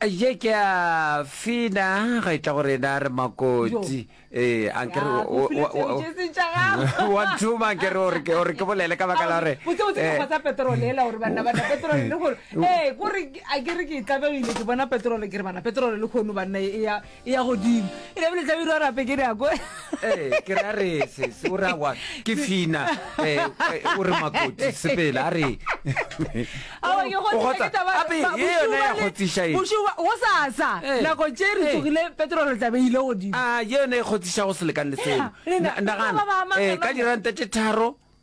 ye ke a fina ga itla gore na re makotsi ee eh, ankere wa thuma ankere ore ke ore ke bolele ka baka la gore botse botse eh. kgotsa petrol ela gore bana bana petrol le gore ee eh, gore a ke re ke tlabegile ke bona petrol ke re bana petrol le khono banna e ya ya godimo e lebile tla biro rape ke nako eh ke ra re se se o ra wa ke fina eh, eh o re makoti sepela a re awa ke go tsa ka ba e yona ya go tsisha e bushu o sa sa eh. nako tse re eh. tsogile petrol tla be ile godimo a ah, ye yone e go tsisha go selekane le seo nagana eh ka diranta tse tharo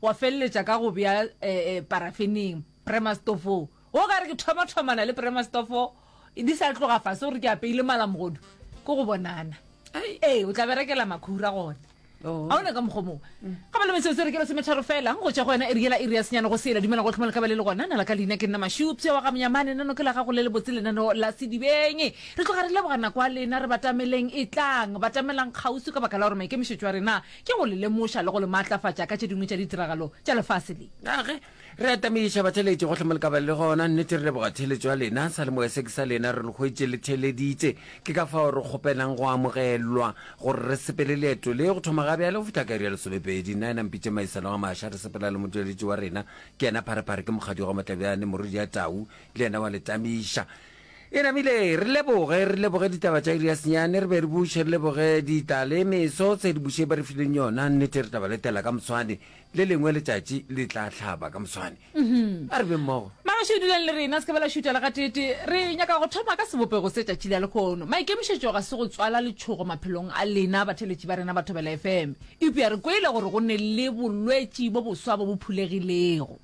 Wa feleletša ka go bea parafeneng premastofong. Wo gare ke thomathomana le premastofo di sa tloga fase gore ke apeile malamogodu ke go bonana. Ee, o tla berekela makhura gona. Oh. a ona ka mokgwa moo ga ba le metsotso re ke re semetharo fela go tswa go yona e riela e re ya senyana go sela dumela go tlhoma le ka ba le le gona na la ka leina ke nna mashupse wa ga monyamane nano ke la gago le le botse lenano la sedibeng re tloga re leboga nako a lena re batameleng e tlang batamelang kgausi ka baka la gore maikemišetso a rena Ke go le lemoša le go le maatlafatša ka tše dingwe tša ditiragalo tša lefase le. Na ge re atamedi tšhabatheletše gohle mo le ka ba le gona? Nnete, re leboga theeletšo ya lena. Salemoya se ke sa lena, re le hwetše le theeleditše. Ke ka fao re kgopelang go amogelwa gore re sepele leeto le go thoma ga bjale go fihla ka iri ya lesomepedi. Nna yena Mpitše Maisalo Gamaša, re sepela le motšweletši wa rena, ke yena Pharephare, ke Mokgadigo Matlabjane, Morwedi ya Tau le yena wa le tamiša. E namile, re leboge, re leboge ditaba tša iri ya senyane, re be re buše, re leboge dita le meso tse di buše ba re fileng yona. Nnete re tla ba letela ka moswane, le lengwe letšatši le tla hlaba ka moswane. A re be mmogo. Magoši o duleng le rena, se ke ba la šutha le gateetee. Re nyaka go thoma ka sebopego se tšatši la lekhono. Maikemišetšo ga se go tswala letšhogo maphelong a lena batheletši ba rena ba Thobela FM. Eupša re kweile gore go ne le bolwetši bo boswa bo bo phulegilego.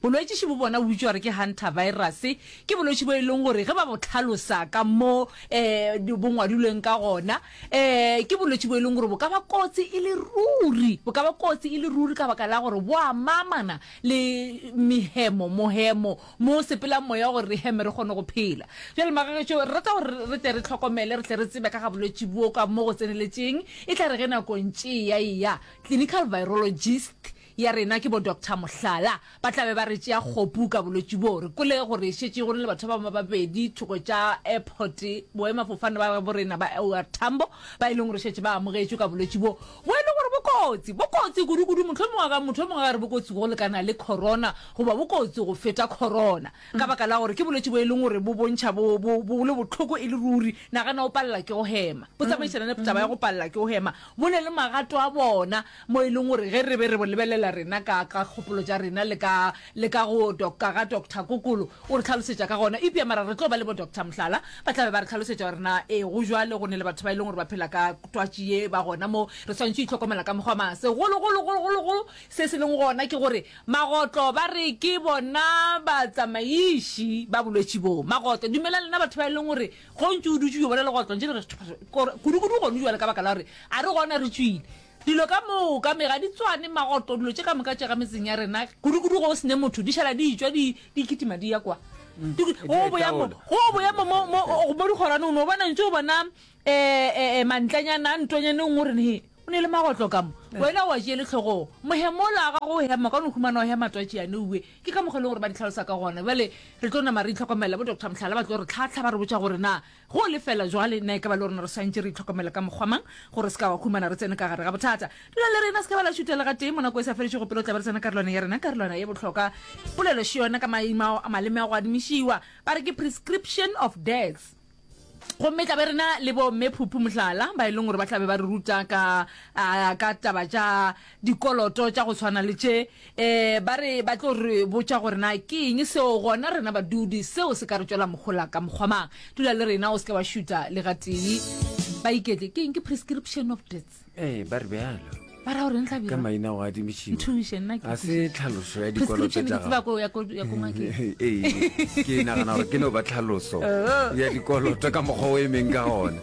Bolwetši bo bona bo bitšwa gore ke hantavirus. Ke bolwetši bo e leng gore ge ba bo tlhalosa ka mo um bo ngwadilweng ka gona um ke bolwetši bo e leng gore bo ka ba kotsi e le ruri, bo ka ba kotsi e le ruri ka baka la gore bo amamana le mehemo, mohemo mo sepelang moya gore re heme re kgone go phela. Bjale magagetšo re rata gore re tle re tlhokomele, re tle re tsebe ka ga bolwetši bo ka mo go tseneletšeng e tla re ge nako ntše e ya e ya, clinical virologist ya rena ke bo Doctor Mohlala ba tla be ba re tšea kgopu ka bolwetši boo. Re kwele gore e šetše go na le batho ba bangwe ba babedi thoko tša airport boemafofane ba bo rena ba OR Tambo ba e leng gore šetše ba amogetšwe ka bolwetši boo bo e leng gore bo kotsi, bo kotsi kudukudu mohlomongwe a ka motho o mongwe a re bo kotsi go lekana le corona goba bo kotsi go feta corona ka baka la gore ke bolwetši bo e leng gore bo bontšha bo bo bo le bohloko e le ruri. Nagana o palela ke go hema, bo tsamaišana le taba ya go palela ke go hema, bo na le magato a bona mo e leng gore ge re be re bo lebelela rena ka, ka kgopolo tša rena le ka, le ka go doka ga Doctor Kokolo, o re hlalosetša ka gona. Eupša mara re tlo ba le bo Doctor Mohlala, ba tla be ba re hlalosetša gore na ee go bjalo, go ne le batho ba e leng gore ba phela ka twatši ye, ba gona moo, re swanetše go itlhokomela ka mokgwa mang. Segolo, golo, golo, golo, golo se se leng gona ke gore magotlo ba re ke bona batsamaiši ba bolwetši boo. Magotlo, dumelang lena batho ba e leng gore go ntše o dutše o yo bona legotlo, ntše le re, Kudu, kudu gonu bjale ka baka la gore a re gona re tšwile. Dilo ka moka me ga di tswane, magoto, dilo tše ka moka tše ga metseng ya rena, kudukudu ge o sene motho, di šala di tšwa di di kitima di ya kwa. Mm. Di- Di Go a boya mo, itaola. go boya mo mo mo Ee. mo dikgorane o no bona ntse o bona eh, eh, eh, mantlanyana a ntwanyane nngwe re ne o ne le magotlo ka mo wena wa tšele tlhogong mohemola a gago o hema ka no humana o hema twatši yane uwe ke ka mokgwa e leng gore ba di tlhalosa ka gona bjale re tlo nama re itlhokomela bo doctor mohlala ba tlo re tlhatlha ba re botša gore na Go lefela jwale, na e ka ba le rona re swantše re itlhokomele ka mokgwa mang gore re se ka wa humana re tsene ka gare ga bothata? Dula le rena, se ka ba la šutela gatee. Mo nako e sa felešego pele o tla ba re tsena karolwana ya rena, karolwana ye bohlokwa. Polelo še yona ka maimao a maleme a go adimišiwa, ba re ke prescription of death. Gomme e tla be re na le bo Mme Phuphu, mohlala, ba e leng gore ba tla be ba re ruta ka, a, ka taba tša dikoloto tša go swana le tše, ee, ba re ba tlo re botša gore na ke eng seo, gona rena badudi seo se ka re tšwela mohola ka mokgwa mang. Dula le rena, o se ke wa šuta le gatee. Ba iketle, ke eng? Ke prescription of death. Ee, ba re bjalo. Ba ra gore eng hlabirwa? Ka maina go adimišiwa. Nthuše nna ke. Ga se tlhaloso ya dikoloto tša gago. Prescription ke tseba ko ya ko ya ko ngakeng. Ee, ke nagana gore ke no ba tlhaloso oh. ya dikoloto ka mokgwa o emeng ka gona.